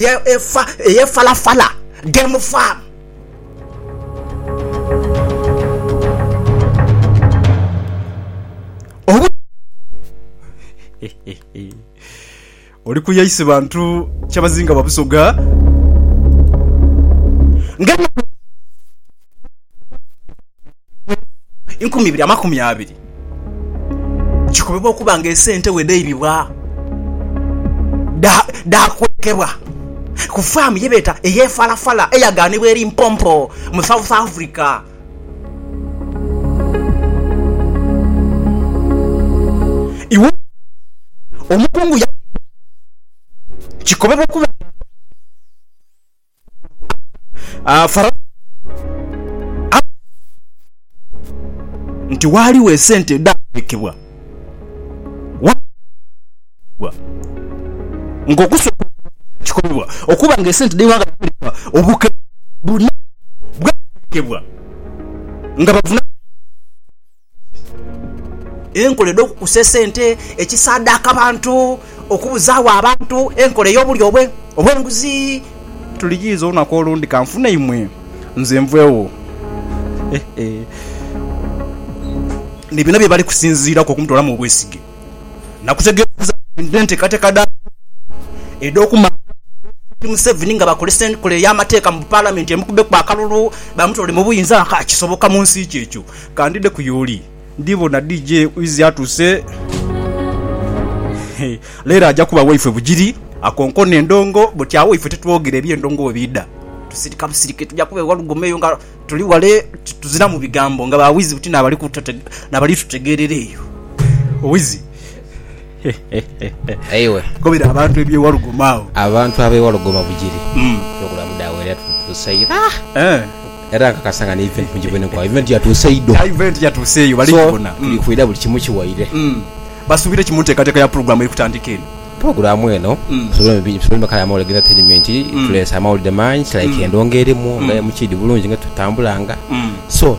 eye Falafala Game Farm. Oli kuya isi bantu kyabazinga Babusoga nga enkumi ibiri amakumi abiri kikobebwa okuba nga esente bwe dhaibibwa dhaakwekebwa ku faamu ye beeta ey'e Falafala eyagaanibwa e Limpopo mu South Africa. Iwo omukungu yaghamba nti kikobebwa okuba nga. Ah, Farao amanhire nti ghaligho esente edhaateekebwa gha ng'okusooka okubalira kikolebwa okuba nga esente dh'eighanga lya America obukebe buna bwateekebwa nga bavunaanibwa Enkola edh'okukusa esente, ekisaadhaaka abantu, okubuzaagho abantu, enkola ey'obulyo obw'enguzi. Tuliyiiza olunaku olundi ka nfune imwe nze nveegho. Ni bino bye bali kusinziiraku okumutoolamu obwesige. Nakutegeeza nti enteekateeka dha Museveni edh'okumanga Pulezidenti Museveni nga bakozesa enkola ey'amateeka mu Palamenti emukubbeku akalulu bamutoole mu buyinza, kisoboka mu nsi ki ekyo? Kandide ku yooli ndibona DJ Wizzy atuuse. Leero aja kuba waifwe bugiri. Akonkona endongo buti agho ife titwogera eby'endongo we biidha. Tusirika busirike tuja kuba ewa Lugome eyo nga tuli wale tuziramu bigambo nga ba Wizzy buti n'abali tutegeerera eyo. Wizzy. Aye gobera abantu eby'ewalugoma agho. Abantu ab'ewalugoma bugiri eby'okulamu dha wera yatutuusa ira. Era nkakasa nga ni event mu giveni kwao. Event yatuusa idho. Event yatuusa eyo bali gibona. So tuli kwira buli kimu kiwaire. Basuubire ki mu nteekateeka ya pulogulaamu eri kutandika eno? Pulogulaamu eno tusobole emikala ya mawulire g'entatainimenti. Tuleese amawulire mangi like endongo erimu nga MCD bulungi nga etutambulanga. So.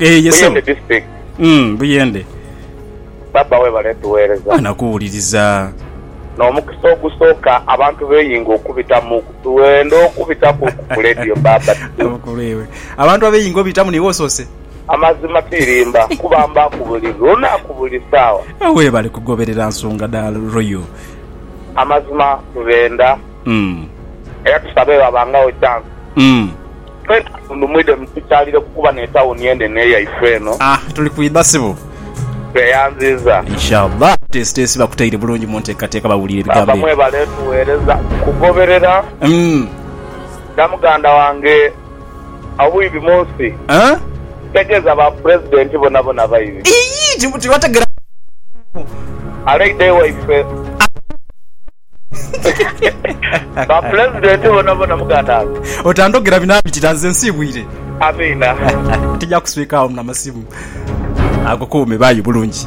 Eh, yes, sebo. Buyende district Mm, Buyende. baba webale tuweereza Mwana kuwuliriza. n'omukisa ogusooka abantu beyinga okubitamu tuwenda okubitaku ku ledio baba Abukulwewe. Abantu abeyinga obitamu niiwe osoose. amazima tirimba kuba mbaaku buli lunaku buli saawa Eh, Webale kugoberera nsonga dha Royal. amazima tubenda Mm. era tusabe babangagho chance Mm. Twenka tundhu mwidhe mutukyalire kukuba n'etawuni enhenhe eyaife eno. Ah tuli kwidha sibu. Tweyanziiza. Inshallah abateesiteesi bakutaire bulungi mu nteekateeka bawulire ebigambo Baaba ebyo. mwebale tugheereza kugoberera. Umm. Dha muganda wange obwibi mu nsi. Huh? Kitegeeza ba Pulezidenti bonabona baibi. Iyii tibategera. Aleidha ewaife. Ba Pulezidenti bonabona muganange. Otandhogera binabitira nze nsiibwire. Amiina. Tija kuswika agho namasimu. Ago kuume bayi bulungi.